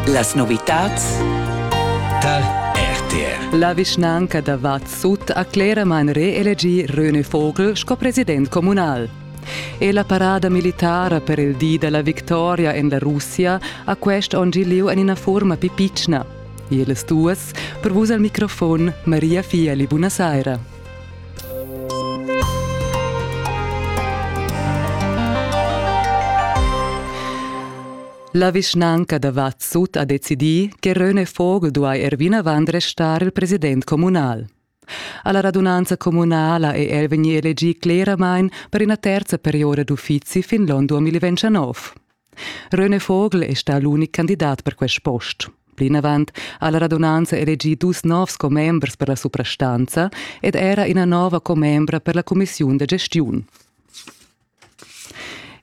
Las novitats dal RTR. La vischnanca da Vad Sut ha cleramain reelegì René Vogel sco president communal. E la parada militara per il di da la victoria en la Russia ha quest onn gì lieu en ina forma più pitschna. Ils duas, per vus al microfon, Maria Fieli, buonasera. La vischnanca da Vad Sut ha decidì che Röne Vogel duai er vinavant restar il president communal. Alla radunanza communala è el vegnì elegì cleramain per ina terza perioda d'uffizi fin l'onn 2019. René Vogel è stà l'unic candidat per quest post. Plinavant ha la radunanza elegì dus novs commembers per la suprastanza ed era ina nova commembra per la cumissiun da gestiun.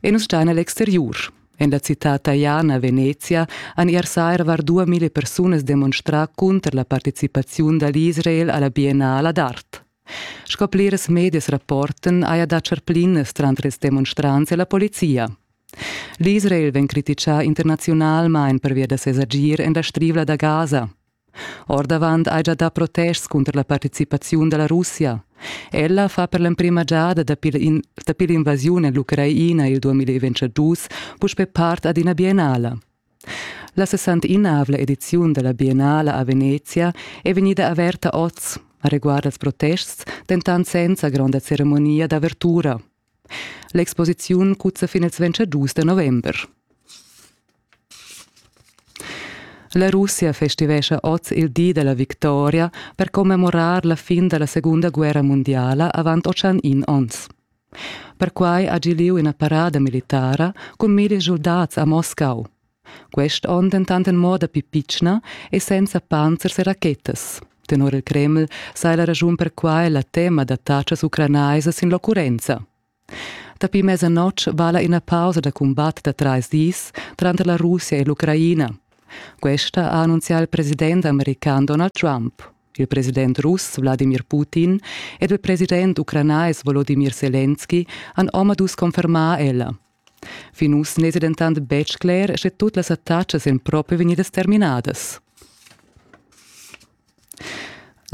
E nus stan a l'exteriur. En la citad taiana Venezia han ier saira var 2000 persunas demonstrà cunter la participaziun da l'Israel a la Biennala d'art. Sco plirs medias rapportan, haja dà charplinas tranter ils demonstrants e la polizia. L'Israel vegn criticà internaziunalmain pervia da ses agir en la Strivla da Gaza. Ordavant hai già dà protests cunter la participaziun da la Russia. Ella fa per l'emprima giada dapi l'invasiun en l'Ucraina il 2022 puspè part ad ina biennala. La sessanteinavla ediziun dalla Biennala a Venezia è vegnida averta oz, areguard als protests dentant senza gronda ceremonia d'avertura. L'exposiziun cuzza fin ils 25 da november. La Russia festivescha oz il di della victoria per commemorar la fin della seconda guerra mondiala avant 801 onns. Perquai ha gi lieu ina parada militara cun milli schuldats a Moscau. Quest onn dentant en moda pli pitschna e senza panzers e rachetas. Tenor il Kreml sai la raschun per quai la tema da tatschas ucranaisas sin l'occurrenza. Dapi mezzanotg vala ina pausa da cumbat da trais dis tranter la Russia e l'Ucraina. Questa ha annunzià il president american Donald Trump. il president russ Wladimir Putin ed il president ucranais Volodimir Selenski han omadus confermà ella. Fin uss n'èsi dentant betg cler, sche tut las attacas èn propi vegnidas terminadas.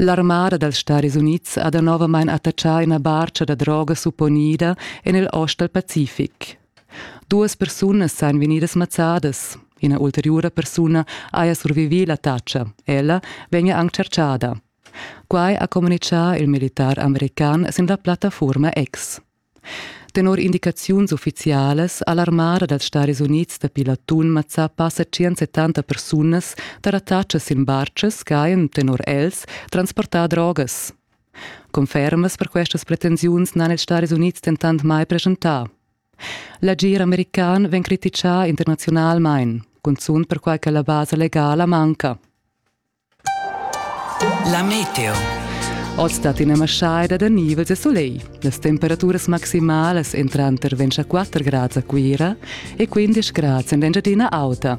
L'armada dals Stadis Unids ha danovamain attaccà ina barcha da droga supponida en il ost dal Pacific. Duas persunas san vegnidas mazzadas. Ina ulteriura persuna haja survivì l'attacca. Ella vegnia anc tschertgada. Quai ha communitgà il militar american sin la plattafuorma X. Tenor indicaziuns uffizialas ha l'armada dals Stadis Unids dapi l'atun mazzà passa 170 persunas da l'attacca sin bartgas ch'hajan tenor els transportà drogas. Confermas per questas pretensiuns n'han ils Stadis Unids dentant mai preschentà. L'agir american vegn criticà internaziunalmain, cunzunt perquai che la basa legala manca. La meteo. Oz dat ina maschaida da nivels e soleil. Las temperaturas maximalas entran tranter 24 grads a Cuira e 15 grads en l'Engiadina Auta.